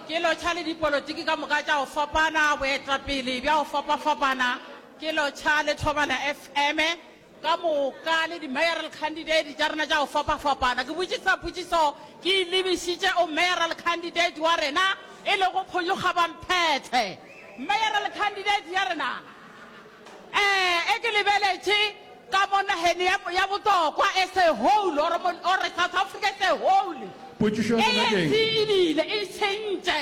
Ke lotšha le dipolotiki ka moka tša go fapana, boetapele bja go fapafapana. Ke lotšha le Thobela FM. ka moka le di-mayoral candidate tša rena tša go fapafapana. Ke botšiša potšišo ke e lebišitše o mayoral candidate wa rena e lego Phonyokgabamphethe. Mayoral candidate ya rena eh e ke lebeletše ka mo nageng ya, ya Botlokwa as a whole or, or South Africa as a whole, Potšišo ya rena ke ANC eng? e bile e tšhentše.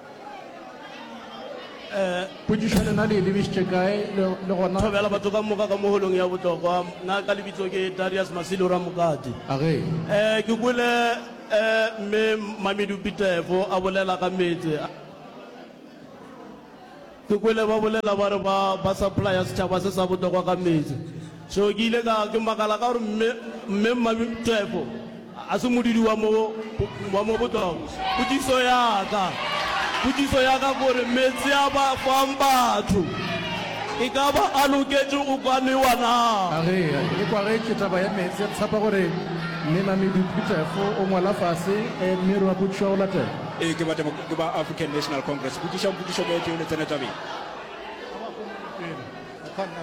Potšišo, Lena le e lebišitše kae le, le gona? Thobela batho ka moka ka mo holong ya bohlokwa. Na ka lebitso ke Darius Masilo Ramokati. A ge. E, ke kwele e, Mme Mamedupi Tefo a bolela ka meetse a. Ke kwele ba bolela ba re ba ba supplya setšhaba se sa bohlokwa ka meetse. So ke ile ka ke makala ka gore mme mme Mmabi Twefo a se modudi wa mo wa mo botlokwa. Potšiso ya ka potšiso ya ka ke gore meetse a ba fang batho e ka ba a loketše go ka nwewa na? A re e kwagetše taba ya meetse re tshepa gore mme Mmabi Twefo o ngwala fase mme re a botšiša go latela. Ee ke ba Ke ba African National Congress. Botšišang potšišo mo etšego le tsene tabeng.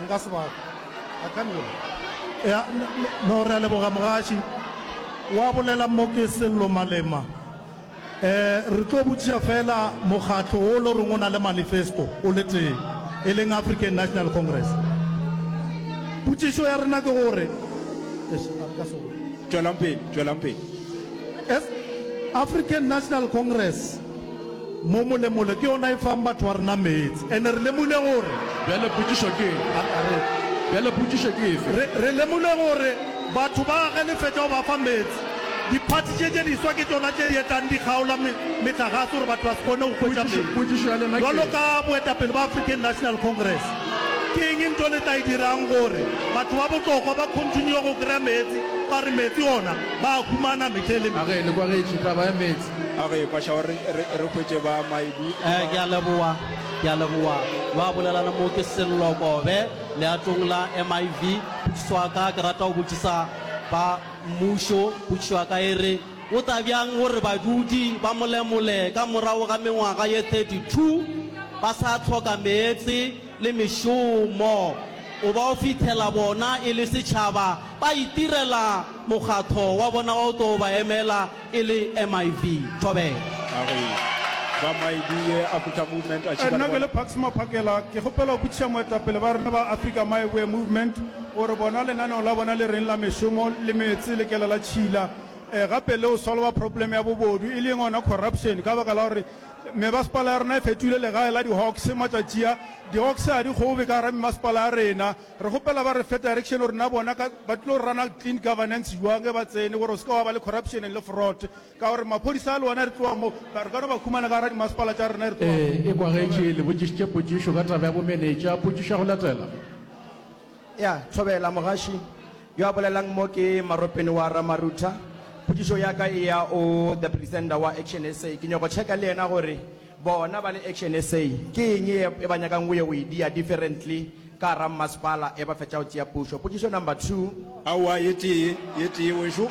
Nka se ba I can't do it. Ya, no re a leboga mogaši. Wa bolela mo ke Sello Malema. Eh, re tlo botšiša fela mokgatlo wo lo reng o na le manifesto o le tee, e leng African National Congress. Potšišo ya rena ke gore, eish, a re ka se go. Tšwelang pele, tšwelang pele. African National Congress mo molemole ke yona e fang batho ba rena meetse and re lemule gore Bjale potšišo ke eng? A- a re- Bjale potšišo ke efe? re, re lemule gore batho ba ge le fetša go ba fa meetse diphathi tše tše diswa ke tšona tše di etlang di kgaola me, metlagase gore batho ba se kgone go hwetša Potšišo- meetse potšišo ya lena ke jwalo eng? ka boetapele ba African National Congress. Ke eng ntho le tla e dirang gore batho ba bohlokwa ba continue go kry-a meetse ka gore meetse ona ba a humana mehla le mehla? Age le kwagetše taba ya meetse? Age ekwa šao re re hwetše ba Maibu ba. Ke a leboa, ke a leboa. Ba bolelana mo ke Sello Kobe leatong la MIV. Potšišo ya ka ke rata go botšisa ba mmušo, potšišo ya ka e re. O tla bjang gore badudi ba Molemole ka morago ga mengwaga ye 32 ba sa hloka meetse le mešomo? O ba o fithela bona e le setšhaba ba itirela mokgatho wa bona wa o tlo ba emela e le MIV. Thobela. A re ba MIV ye a Kutha Movement a tšhika le bona. Nna ke le Pax Maphakela, ke kgopela go botšiša moetapele ba rena ba Afrika Maivoe Movement gore bona lenaneo la bona le reng la mešomo le meetse le kela la tšhila. eh, gape le go solva problem ya bobodu e leng ona corruption ka baka la gore mebasepala ya rena e fetile legae la di-hawks matšatšia di-hawks ga di gobe ka gara mebasepala ya rena re gopela ba re fe direction gore na bona ba tlilo go rana clean governance jwang e ba tsene gore o se ka wa ba le corruption le fraud ka gore maphodisa a le ona re tloa mo re ka no ba khumana ka gara dimasepala tša rena re tloa eh, e kwagetše le botšišitše potšišo ka taba ya bomenetša potšišo ya go latela ya thobela mogaši Yo a bolelang mo ke Maropeni wa Ramarutha. Potšišo ya ka e ya o the presenter wa Action SA. Ke nyoko checka le yena gore bona ba le Action SA ke eng ye e ba nyakang go yo go e dia differently ka gara mmasepala e ba fetša go tšea pušo. Potšišo number two. Aowa ye tee ye tee wešo.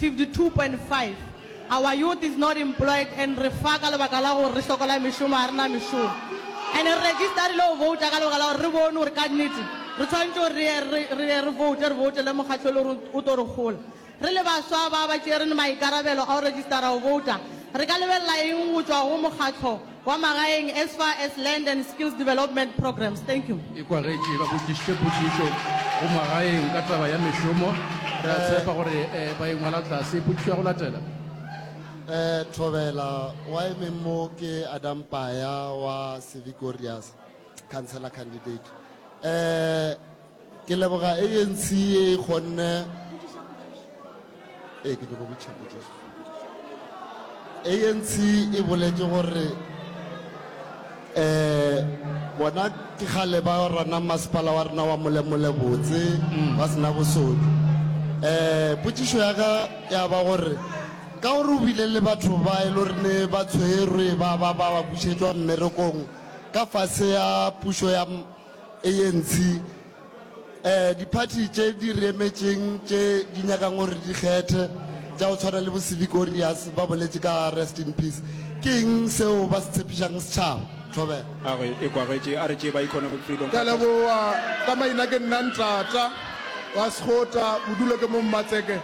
52.5 Our youth is not employed and re fa ka lebaka la gore re sokola mešomo, ga re na mešomo. And re registerile go vouta ka lebaka la gore re bone gore ka nnete re tshwanetše gore re ye re, re ye re voute, re voutele mokgatlo e le gore o tlo re gola. Re le baswa ba ba tšerene maikarabelo a go registera go vouta, re ka lebelela eng go tšwa go mokgatlo? Kwa magaeng as far as land and skills development programs. Thank you. E kwagetše ba botšišitše potšišo go magaeng ka taba ya mešomo. Re a tshepa gore ba e ngwala tlase. Potšišo ya go latela. Eh, Thobela, wa emeng mo ke Adam Paya wa Civic Warriors, Councillor candidate. Eh, Ke leboga ANC ye e kgonne ee ke nyoko botšhako Jesu. ANC e boletše gore eh bona ke kgale ba rana masepala wa rena wa molemole botse mm. ba sena bosodi eh potšišo ya ka ya ba gore ka gore o bile le batho ba e le rene ba tshwerwe ba ba ba ba bušetšwa mmerekong ka fase ya pušo ya ANC um diphathi tše di re emetšeng tše di nyakang gore di kgethe tša go tshwana le bo Sivikorius ba boletše ka Rest in Peace. Ke eng seo ba se tshepišang setšhaba? Thobela. Gagwe e kwagetše a re tše ba ikgone go Freedom Ke a Fighters. leboga ka maina ke nna ntata wa sekgota bodulo ke mo mmatseke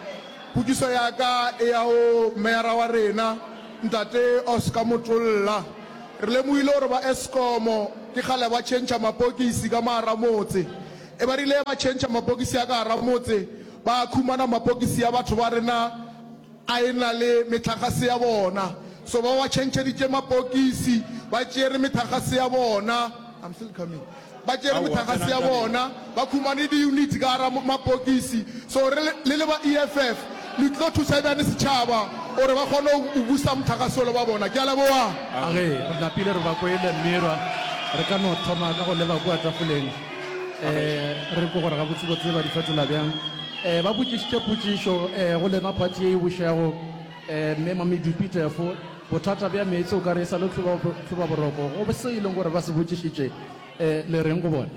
potšiso ya ka e ya go meyara wa rena ntate oscar motlolla Re lemohile gore ba Eskom ke kgale ba tšhentšha mapokisi ka magar'a motse. E ba rile ba tšhentšha mapokisi a ka gar'a motse, ba khumana mapokisi a batho ba rena a e-na le methagase ya bona. So ba ba tšhentšheditše mapokisi, ba tšere methagase ya bona. ba tšere mothagase ya bona, ba khumane diyuniti ka gara mapokisi, so re le le ba EFF le tlo thusa bjani setšhaba gore ba kgone go busa mothagase ole ba bona. Ke a leboga. A re re napile re ba kwele mme ra re ka no thoma ka go leba kua tafoleng um re kwe gore gabotsebotse ba di fetola bjang. Um ba botšišitše potšišo um go lena party ye e bušago um mme Mamedupi Tefo. Bothata bja meetse o ka re e sa le tlhobaboroko go se e leng gore ba se botšišitše. Le reng go bona?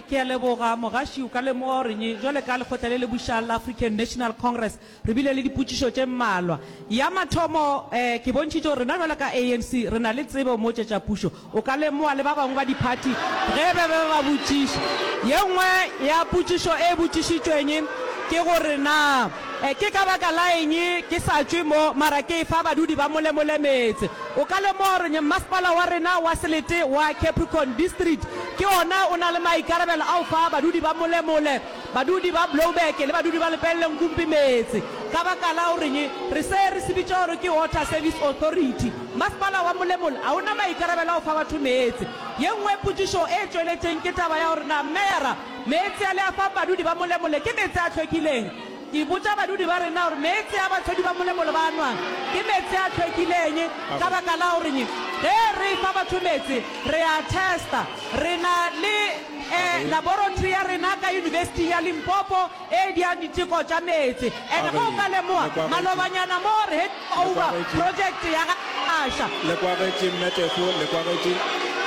Ke a leboga, Mogaši. O ka lemoga gore nyi, bjale ka lekgotla le le bušang la African National Congress, re bile le dipotšišo tše mmalwa. Ya mathomo, ke bontšhitše gore rena bjale ka ANC re na le tsebo mo tše tša pušo. O ka lemoga le ba bangwe ba diphathi ge ba be ba botšiša. Ye nngwe ya potšišo e botšišitšweng ke gore, Na ke ka baka la eng ke sa tšwe mo mara ke efa badudi ba Molemole meetse? O ka lemoga gore Mmasepala wa rena wa Selete wa Capricorn District ke ona o na le maikarabelo a go fa badudi ba Molemole Badudi ba Blouberg le badudi ba Lepelle Nkumpi meetse ka baka la gore re se re se bitša gore ke Water Service Authority. Masepala wa Molemola ga o na maikarabelo a go fa batho meetse. Ye nngwe potšišo e tšweletšeng ke taba ya gore na Meyara meetse a le a fang badudi ba Molemola ke meetse a hlwekileng. Ke botša badudi ba rena gore meetse a bahlodi ba Molemola ba a nwang ke meetse a hlwekileng ka baka la gore ge re fa batho meetse re a testa. Re na le. e laboratory ya rena ka Yunibesiting ya Limpopo e diang diteko tša meetse, and ge o ka lemoga malobanyana mo re handing over project ya ga Phasha. Le kwagetše Mme Tefo, le kwagetše.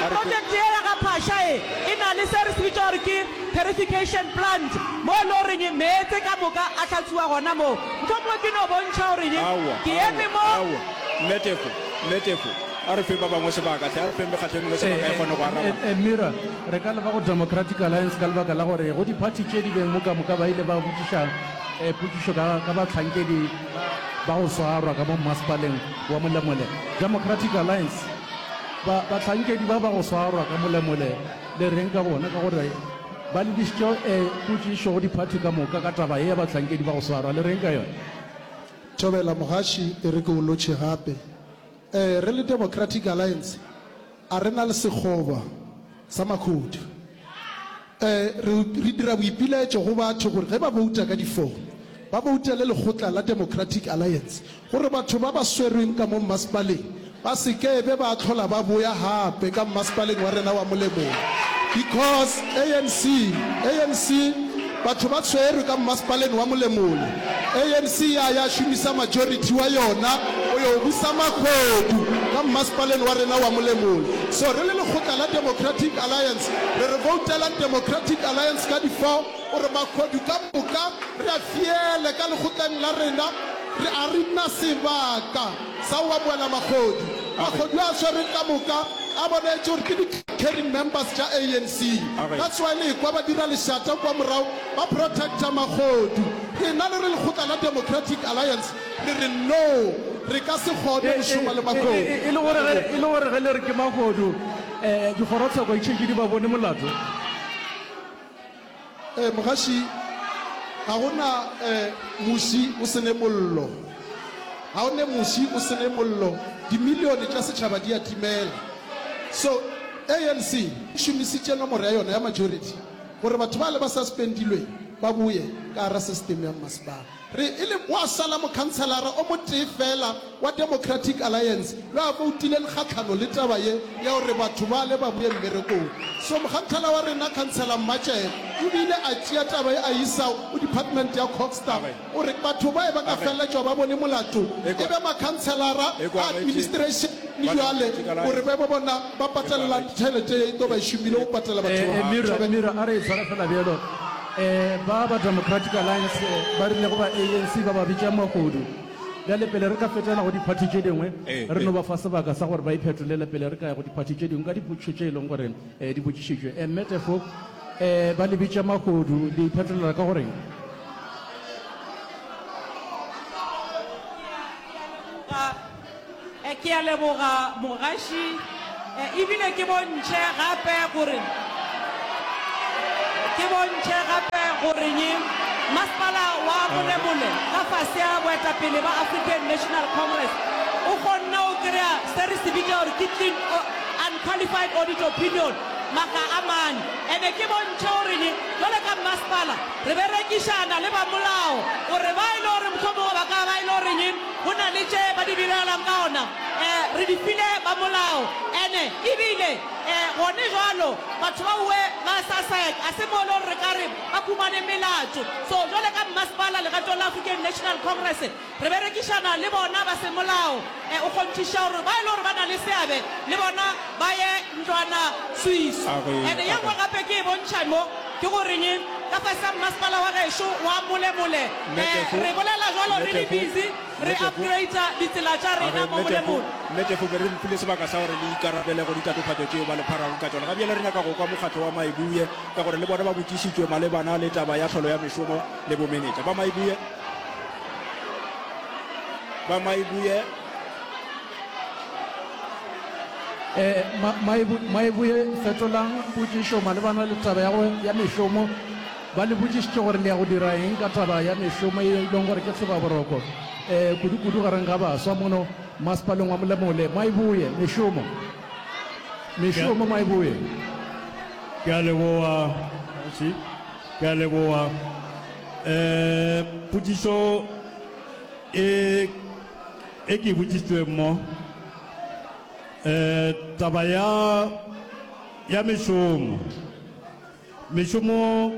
A re ke. Project ye ya ga Phasha e, e na le se re se bitša gore ke purification plant, mo e le goreng meetse ka moka a hlatsuwa gona moo. Mohlomongwe ke no bontšha gore Aowa, ke aowa, eme mo. aowa. Mme Tefo, Mme Tefo. A re feng ba bangwe sebaka hle, a re feng mekgatlo e mengwe sebaka e kgone go araba. A Mira, re ka leba go Democratic Alliance ka lebaka la gore go diphathi tše di beng mo kamoka ba ile ba botšiša potšišo ka ka bahlankedi ba ba go swarwa ka mo mmasepaleng wa Molemole. Democratic Alliance, Ba bahlankedi ba ba go swarwa ka Molemole le reng ka bona? Ka gore ba lebišitše potšišo go diphathi ka moka ka taba ye ya bahlankedi ba go swarwa, le reng ka yona? Thobela, Mogaši e re ke o lotšhe gape. Ee, re le Democratic Alliance a re na le sekgoba sa makhodu. Ee, re, re dira boipilaetšo go batho gore ge ba bouta ka difomo, ba boutele lekgotla la Democratic Alliance gore batho ba ba swerweng ka mo mmasepaleng ba se ke be ba hlola ba boya gape ka mmasepaleng wa rena wa Molemong because ANC, ANC, Batho ba swerwe ka mmasepaleng wa Molemole. ANC ya ya šomisa majority wa yona go yo busa makgodu ka mmasepaleng wa rena wa Molemole. So re le lekgotla la Democratic Alliance re re voutelang Democratic Alliance ka di four gore makgodu ka moka re a fiele ka lekgotleng la rena. Re a re nna sebaka. Sa oamoela magodu. Magodu a swereng ka moka a boletše gore ke di carrying members tša ANC. That's why le ekwa ba dira lešata kua morago ba protector magodu. Rena le re lekgotla la Democratic Alliance re re no, re ka se kgone go šoma le magodu. E le gore ge, e le gore ge le re ke magodu, dikgorotsheko e tšetše di ba bone molato? Eh, mogaši, ga go na eh, muši o sene mollo. Ga o ne muši o sene mollo, dimilione tša setšhaba di a timela. So, ANC e šomisitše nomoro ya yona ya majority gore batho bale ba suspendilweng ba boye ka gara system ya mmasepala. Re e le gwa sala mokhanselara o motee feela wa Democratic Alliance yo a boutileng kgahlano le taba ye ya gore batho bale ba boe mmerekong. So mokganthala wa rena, Khansela Mmatšee, o bile a tšea taba ye a e isa go Department ya Cogsta gore batho baye ba ka feleletšwa ba bone molato e be makhanselara a administration le bjale gore be bona ba patalelang tšhelete ye e tlo ba e šomile go patela batho ba. Ba ba Democratic Alliance ba rile go ba ANC ba ba bitša magodu. Bjale pele re ka fetela go diphathi tše dingwe, re no ba fa sebaka sa gore ba iphetolele pele re ka ya go diphathi tše dingwe ka dipotšišo tše e lego gore di botšišitšwe. Mme Teffo, ba le bitša magodu, le iphetolela ka go reng? E Ke a leboga mogaši e, ebile ke bontšhe gape gore ke bontšhe gape goreng masepala wa Bolebole ka fase ya boetapele ba African National Congress o kgonne go kry-a se re se bitša gore ke clean o- unqualified audit opinion maga a mane ene ke bontšhe goreng jale ka masepala re berekišana le bamolao gore ba e le gore mohlomongwe ba ka ba e le goreng Go na le tše ba di diragalang ka gona, e, re di file ba molao. Ene, e bile, e, gone bjalo, batho ba we ba Sussex, ga se mo e le gore re ka re ba humane melato. So, bjale ka mmasepala legatong la African National Congress, re berekišana le bona ba semolao, e, o kgonthiša gore ba e le gore ba na le seabe le bona ba ye ntlwana Swiss. Ene ye nngwe gape ke e bontšha mo. Ke go re'ng ka fase ga mmasepala wa gešo wa Molemole? Eh, re bolela jwalo re le busy re upgrader ditsela tša rena mo Molemole. Mme Tefo, be re mpile sebaka sa gore le ikarabele go ditatofatšo tšeo ba le pharago ka tšona. Ga bjale re nyaka go kwa mokgatlo wa Maibuye ka gore le bona ba botšišitšwe malebana le taba ya tlholo ya mešomo le bomenetša ba Maibuye. Ba Maibuye. Maibuye, fetolang potšišo malebana le taba ya go ya mešomo. Ba le botšišitše gore le ya go dira eng ka taba ya mešomo ye e lego gore ke hlobaboroko kudu-kudu gareng ga baswa mono Masepaleng wa Molemole. Maibuye, mešomo, mešomo, Maibuye. Ke a leboga, Kgoši. Ke a leboga. Potšišo e. E ke botšitšweng mo, e, taba ya, ya mešomo. Mešomo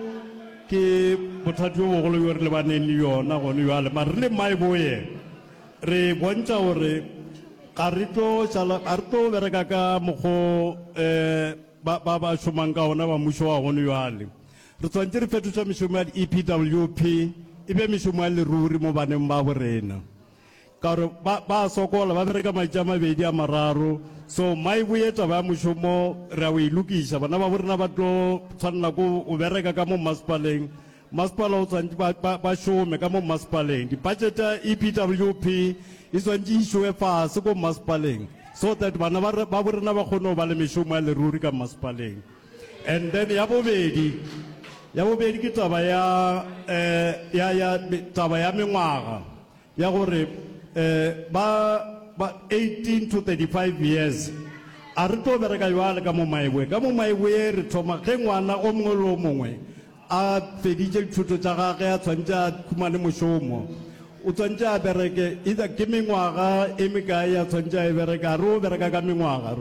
ke bothati bjo bogolo bjo re lebaneng le yona gone bjale, mare re le maiboye re bontšha gore ga re tlo šala, ga re tlo bereka ka mokgo, e, ba, ba, ba šomang ka ona ba mušo wa gone bjale. Re swanetše re fetoša mešomo ya di-EPWP e be mešomo ya leruri mo baneng babo rena. Ka gore ba, ba a sokola, ba bereka matši a mabedi a mararo. So mai boye taba ya mošomo re a o e lokiša. Bana babo rena ba tlo tshwanela ko o bereka ka mo mmasepaleng. Mmasepala o tshwanetse ba, ba, ba šome ka mo mmasepaleng. Di-budget ya EPWP e tshwanetse e išowe fase ko mmasepaleng so that bana ba, babo rena ba kgone go ba le mešomo ya leruri ka mmasepaleng. And then ya bobedi, ya bobedi ke taba ya eh, ya ya taba ya mengwaga ya gore eh, ba ba 18 to 35 years a re tlo bereka jwale ka mo maebue ka mo maebue re thoma ge ngwana o mongwe le o mongwe A feditše dithuto tša gage a swantše a humane mošomo. O swantše a bereke either ke mengwaga e mekae a swantše a e bereka. A re o bereka ka mengwaga.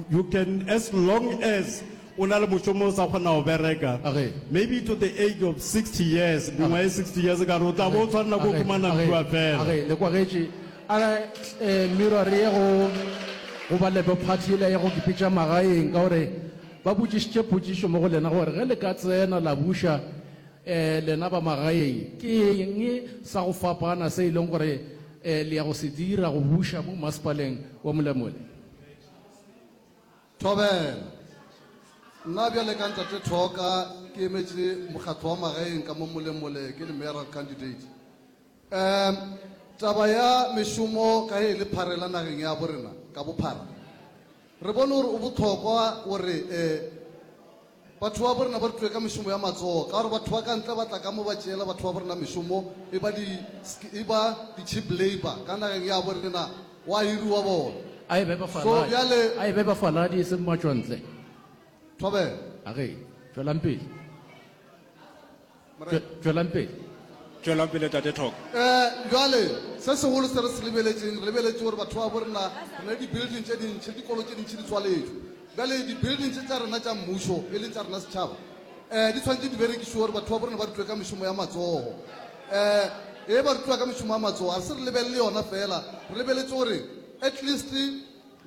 You can as long as o na le mošomo o sa kgona go bereka. Maybe to the age of 60 years, mengwaga e 60 years ka re o tla bo o swanela ke go humana kua fela. Le kwagetše. A re Miro re ye go go ba lebo party yela ya go kipitša magaeng ka gore. Ba botšišitše potšišo mo go lena gore ge le ka tsena la buša e lena ba magaeng, ke eng sa go fapana se e leng gore e le ya go se dira go buša mo Mmasepaleng wa Molemole? Thobela, Nna bjale ka Ntate Thoka ke emetše mokgatlo wa magaeng ka mo Molemole, ke le Mayoral Candidate. Umm taba ya mešomo ka ge e le pharela nageng ya bo rena ka bophara re bone gore o bohlokwa gore eh batho ba bo rena ba rutwe ka mešomo ya matsogo ka gore batho ba ka ntle ba tla ka mo ba tšeela batho ba bo rena mešomo e ba di e ba di cheap labour ka nageng ya bo rena wa hiriwa bona A e be ba so faladi. bjale A e be ba faladi e seng matšwantle. thobela A re, tšwelang pele. Tšwelang pele. Tšwelang pele, Tate Thok. E, bjale, se segolo se re se lebeletšeng, re lebeletše gore batho ba bo rena, re na le di-building tše dintši, le dikolo tše dintši di tswaletšwe. Bjale, di-building tše tša rena tša Mmušo, e leng tša rena setšhaba, e, di tshwanetše di berekišwe gore batho ba bo rena ba rutwe ka mešomo ya matsogo. E, e ba rutwa ka mešomo ya matsogo, ga re se re lebelele yona feela, re lebeletše gore at least,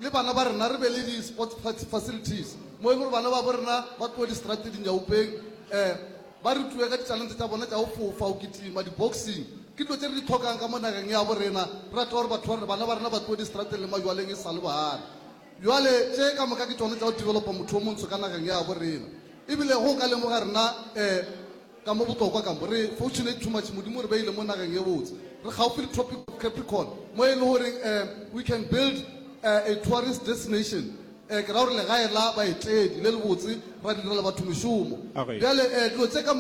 le bana ba rena re be le di sports facilities mo e le gore bana ba bo rena ba tloe distrate dinyaupeng um ba rutue ka ditalente tša bona tša go fofa go kitima di-boxing ke dilo tše re di tlhokang ka mo nageng ya bo rena re rata gore batho ba rena bana ba rena ba tloe distrateng le majwaleng e sa le baana bjale tše ka moka ke tšone tša go developa motho o montsho ka nageng ya bo rena ebile go ka lemoga rena um Ka mo bohlokwa ka mo, re fortunate too much, Modimo o re beile mo nageng e botse. Re gaufi le Tropic of Capricorn, mo e le goreng um we can build a a tourist destination, um ke ra gore legae la baetedi le lebotse, ra direla batho mešomo. Okay. Bjale um dilo tše ka.